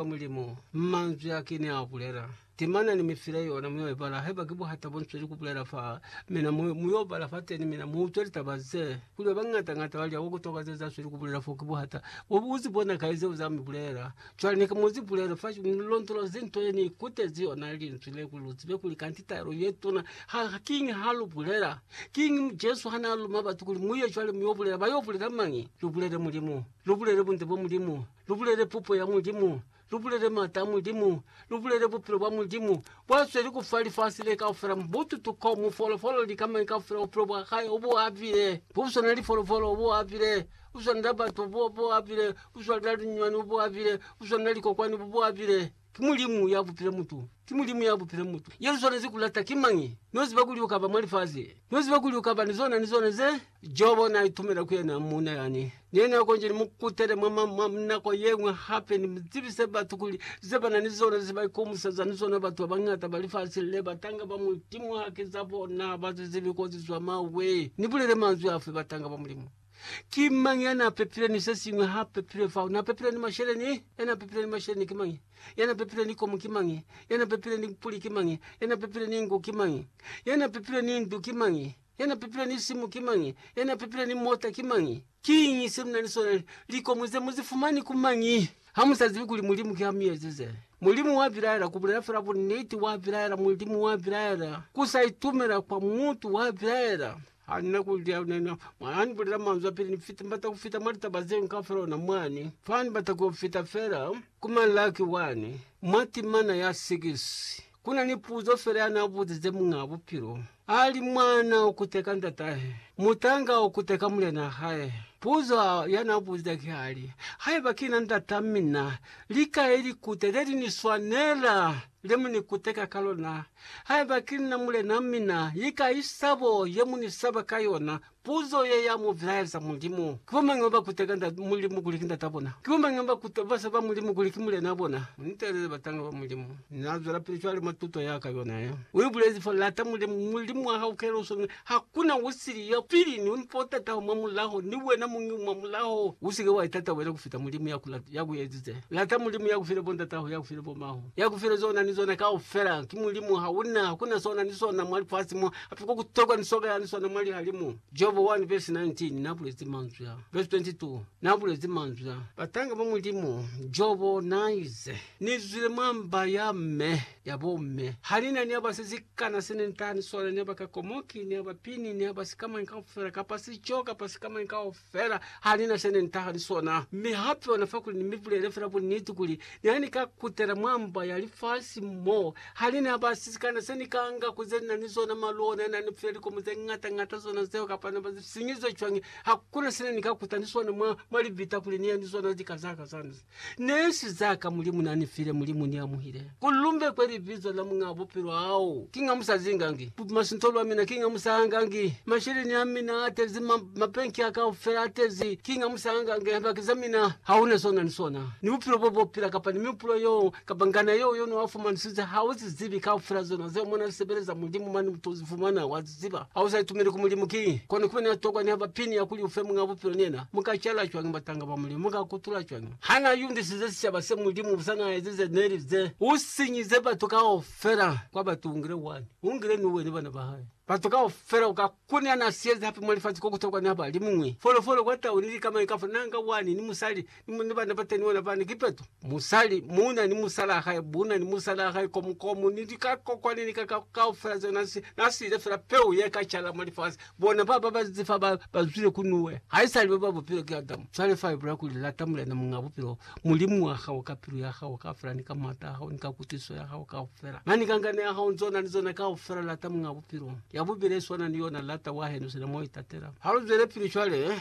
kwa Mulimu, manzwi a kini a bulela. Timana ni mifile yona mu yo ibala, haiba ki buhata bo nzweli kubulela fa mina, mu yo bala fateni, mina mu utwe litaba ze. Kuli ba bañata ñata ba lya ku toka ze za zweli kubulela fo ki buhata. Bo bu zi bona kai zeo za mi bulela? Cwale ni ka mu zi bulela fa ni londolozi nto ye ni ikutezi yona Linzwi le, kuli lu zibe kuli kanti taelo ye tuna ha kiñi ha lu bulela. Kiñi Jesu ha na luma batu kuli, Mu ye cwale mu yo bulela? Ba yo bulela mañi? Lu bulele Mulimu. Lu bulele bunde bwa Mulimu. Lubulele pupo ya Mulimu, lubulele mata a Mulimu, lubulele bupilo bwa Mulimu bwasweli kufa lifasi le kaufela, mubutu, tukomu, folofolo, lika, mañi kaufela, bupilo bwa hae obuabile, buswana ni folofolo obuabile, buswana na batu obuabile, buswana na linywani obuabile, buswana na likokwani bubuabile. Ki Mulimu ya bupila mutu. Ki Mulimu ya bupila mutu. Ye lu swanezi ku lata ki mañi? No ziba kuli u ka ba mwa lifaze. No ziba kuli u ka ba ni zona ni zona ze. Jobo na itumela ku yena muuna yani ne na konji ni mu kutele mwa, mwa nako ye ñwi hape, ni mu zibise batu kuli ze ba na ni zona ze ba ikomuseza ni zona batu ba bañata ba lifasi le, batanga ba Mulimu haki za bona, ba zizibi kozi zwa mawe. Ni bulele manzwi afi batanga ba Mulimu? Ki mañi ya n'a pepile ni se siñwi ha pepile fao? N'a pepile ni mashele ni? Ya n'a pepile ni mashele ni ki mañi? Ya n'a pepile ni komu ki mañi? Ya n'a pepile ni puli ki mañi? Ya n'a pepile ni ngu ki mañi? Ya n'a pepile ni ndu ki mañi? Ya n'a pepile ni simu ki mañi? Ya n'a pepile ni mota ki mañi? Kiñi se mu na ni sona? Likomu ze mu zi fumani ku mañi? Ha mu sa zibi kuli Mulimu ki ha mi ezize? Mulimu wa bilaela, ku bulela fela buniti, wa bilaela, Mulimu wa bilaela, ku sa itumela kwa mutu, wa bilaela. Ha ni na ku li yeo, ne ni mwa ni bulela manzwi a pili, Ni fita, ni bata ku fita mwa litaba ze ngi kaufela ona mwani. Fa ni bata ku yo fita fela ku malaki wani, mwa timana ya 6, ku na ni puzo fela ya na buzize Muñaa Bupilo. A li, Mwana u kuteka ndatahe, mutanga u kuteka mulena hae. Puzo ya na buzize ki a li, Haiba ki na ndata mina, li kai likute le li ni swanela le mu ni kuteka ka lona? Haiba ki nna Mulena, mi na li kai sabo ye mu ni saba ka yona? Puzo ye ya mu bilaeza, Mulimu. Ki bo mañi ba ba kuteka Nda, Mulimu kuli ki Ndata bona? Ki bo mañi ba ba kuta, ba saba Mulimu kuli ki Mulena bona? Ni teelele batanga ba Mulimu. Na zwelapili cwale mwa tuto ya ka yona ye. U ibulezi fa, Lata Mulimu, Mulimu wa hao, kela usonge. Hakuna usili ya pili ni untataho mwa mulaho, ni wena muñi mwa mulaho. Usike wa itata wena kufita Mulimu ya ku lata, ya ku ezize. Lata Mulimu ya ku file bo ntataho, ya ku file bo maho, ya ku file zona ni zona kaufela. Ki Mulimu, hauna, hakuna sona ni sona mwa lifasi mo, hape kwa ku tokwa ni soka yani sona mwa lihalimu. Jobo 1 vesi 19, na bulezi manzwi a. Vesi 22, na bulezi manzwi a. Batanga ba Mulimu, Jobo na ize, Ni zwile mwa mba ya me. ya bo mme. Ha ni na ni aba se sikana se ne ntani sona, ni aba kakomoki, ni aba pini, ni aba sikamañi kaufela, kapa sico, kapa sikamañi kaufela, ha ni na se ne ntaha ni sona. Mi hape ona fa kuli ni mi bulele fela bunniti kuli, ni ha ni ka kutela mwa mba ya lifasi mo, ha ni na ba se sikana se ni ka nga ku ze ni na ni zona, malu ona a na ni file likomo ze ngata ngata zona zeo, kapa na ba sinyizwe cwañi, hakuna se ne ni ka kuta ni sona mwa, mwa libita kuli ni ye ni zona lika za ka zani. Neshi zaka Mulimu nanifile, Mulimu niamuhile. Kuli lumbekwe libizo la Muñaa Bupilo hao, kinga musazingangi. Kupima sinto lwa mina, kinga musahangangi. Masheleni amina atezi, ma, mabenki a kaufela atezi, kinga musahangangi. Lihambaki za mina, hauna seo nani sona, ni bupilo bo bopila, kapa ni mihupulo yeo, kapa ngana yeo yono afumanisize, hauzizibi, kaufela zona zeo mona sebeleza Mulimu mane muto uzifumana, wa ziziba. ziba ha u sa itumeli ku Mulimu ki kona ku ba ni ya tokwa niha ba pini ya kuli u fe Muñ'a Bupilo ni yena. Mu ka cala cwañi batanga ba Mulimu? Mu ka kutula cwañi ha na yundisize sicaba se Mulimu busa na ezize neli ze u sinyize batu kaufela kwa batu? U ngile wani, u ngile ni uwe ni bana ba hae. Batu kaufela u ka kuni ha na siezi hape mwa lifasi ko ku tokwa niha ba li muñwi folofolo kwa tau ni lika mañi, kafo na nga wani ni musali Ni ni bana bateni bona bani, ki peto. Musali, muna ni musala wa hae, muna ni musala wa hae, komu, komu, ni likakokwa ni likaka kaufela zeo na si, na siile fela peu ye ka cala mwa lifasi. Bona baba ba zifa ba, ba zwile ku Nuwe. Haisali baba bupilo ki Adamu. Cwale fa ibulela kuli, Lata Mulena Muñ'a Bupilo, Mulimu wa hao, ka pilu ya hao kaufela, ni ka m'ata a hao, ni ka kutwisiso ya hao kaufela, na ni ka ngana ya hao, ni zona, ni zona kaufela. Lata Muñ'a Bupilo. Ya bubili i swana ni yona, Lata wahenu sina mwa u itatela. Ha lu zwelapili cwale.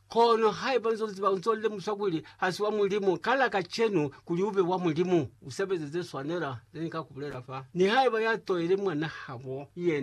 Kono haiba nzo ziba unzo lemusa kuli hasi wa Mulimu, kala kacenu kuli ube wa Mulimu. Usebeze ze swanela ze ni ka kubulela fa. Nihaiba ya toile mwanahabo yena.